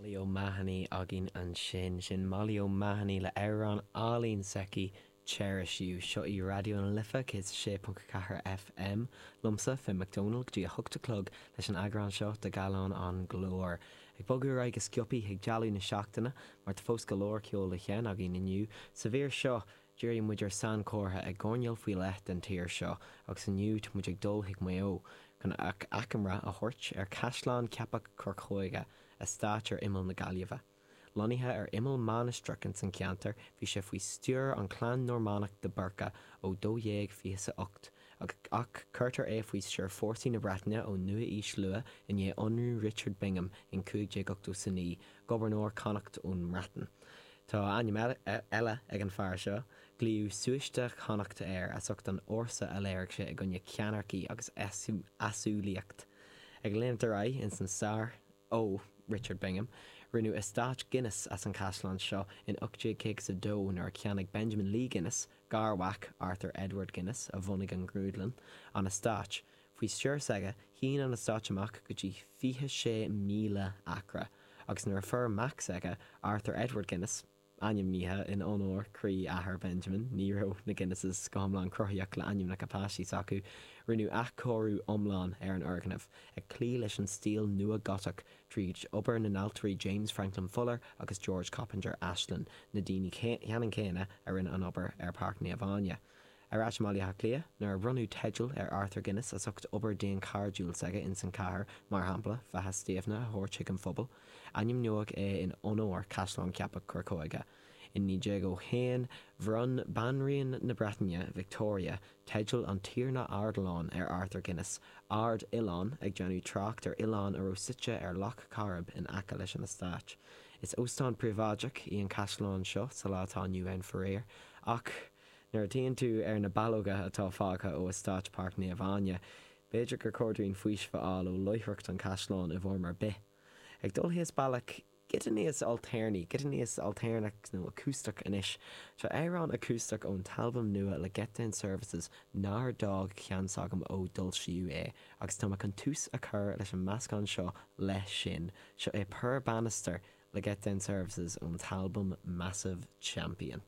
Molly O'Mahony againn ansin. Sin Molly O'Mahony le amhrán álainn s'aici, Cherish You. Seo í Raidió na Life 106.4 FM. Liomsa, Finn McDonald, go dtí a hocht a chlog leis an eagrán seo de Gallán an Ghlóir. Ag bogadh ar aghaidh go sciobtha chuig dealbh na seachtaine, mar tá fós go leor ceol le seinm againn inniu. Sa mhír seo, Díreoidh muid ar sainchomhartha i gcoirnéal faoi leith den tír seo agus inniu tá muid ag dul chuig Maigh Eo chun achoimre a thabhairt ar Chaisleán Cheapach Corcóige, eastáit ar imeall na Gaillimhe. Lonnaithe ar imeall mainistreach ins an cheantar, bhí sé faoi stiúir an chlann Normánach de Búrca ó 1228 agus ach cuirtear é faoi stiúir fórsaí na Breataine ón nua-aois luath i ndiaidh ionradh Richard Bingham in 1589, Gobharnóir Connacht ón mBreatain. Tá ainm eile ag an fear seo, glaodh Súiste Chonnacht air as ucht an fhórsa a léirigh sé i gcoinne ceannaircí agus easumhlaíocht. Ag léimt ar aghaidh ins an stair, ó, Richard Bingham, rinneadh eastáit Guinness as an chaisleán seo in 1852 nuair a cheannaigh Benjamin Lee Guinness, garmhac Arthur Edward Guinness a bhunaigh an ghrúdlann, an eastáit. Faoi stiúir s'aige, shín an eastáit amach go dtí 26,000 acra agus nuair a fuair mac s'aige, Arthur Edward Guinness, ainmnithe in onóir croí athair Benjamin, ní raibh na Guinnesses go hiomlán cruthaíoch le ainmneacha páistí s'acu, rinneadh athchóiriú iomlán ar an fhoirgneamh, ag cloí leis an stíl nua Gotach, tríd obair na n-ailtirí James Franklin Fuller agus George Coppinger Ashlin, na daoine cheannann céanna a rinne an obair ar Páirc Naomh Áine. Ar ais i mBaile Átha Cliath, nuair a bhronnadh teideal ar Arthur Guinness as ucht obair dhaonchairdiúil s'aige ins an chathair, mar shampla, Faiche Stiabhna a thabhairt chuig an phobal, ainmníodh é in onóir Caisleán Cheapach Corcóige. In 1901, bhronn Banríon na Breataine, Victoria, teideal an Tiarna Ardilaun ar Arthur Guinness, Ard Oileán, ag déanamh trácht ar oileán a raibh suite ar Loch Coirib in aice leis an eastáit. Is óstán príobháideach í an caisleán seo sa lá atá inniu ann, faraor, ach, Nuair a théann tú ar na ballóga atá fágtha ó eastáit Páirc Naomh Áine, b'fhéidir gur chóir dúinn faoiseamh a fháil ó láithreacht an Chaisleáin i bhfoirm ar bith. Ag dul thíos bealach giota níos ailtéarnaí, giota níos ailtéarnach nó acústach anois, tá amhrán acústach ón t-albam nua le Getdown Services nár d'fhág ceann s'agam ó d'fhoilsíodh é agus tá mé chun tús a chur leis an meascán seo leis sin. Seo é Poor Bannister le Getdown Services ón t-albam Massive Champion.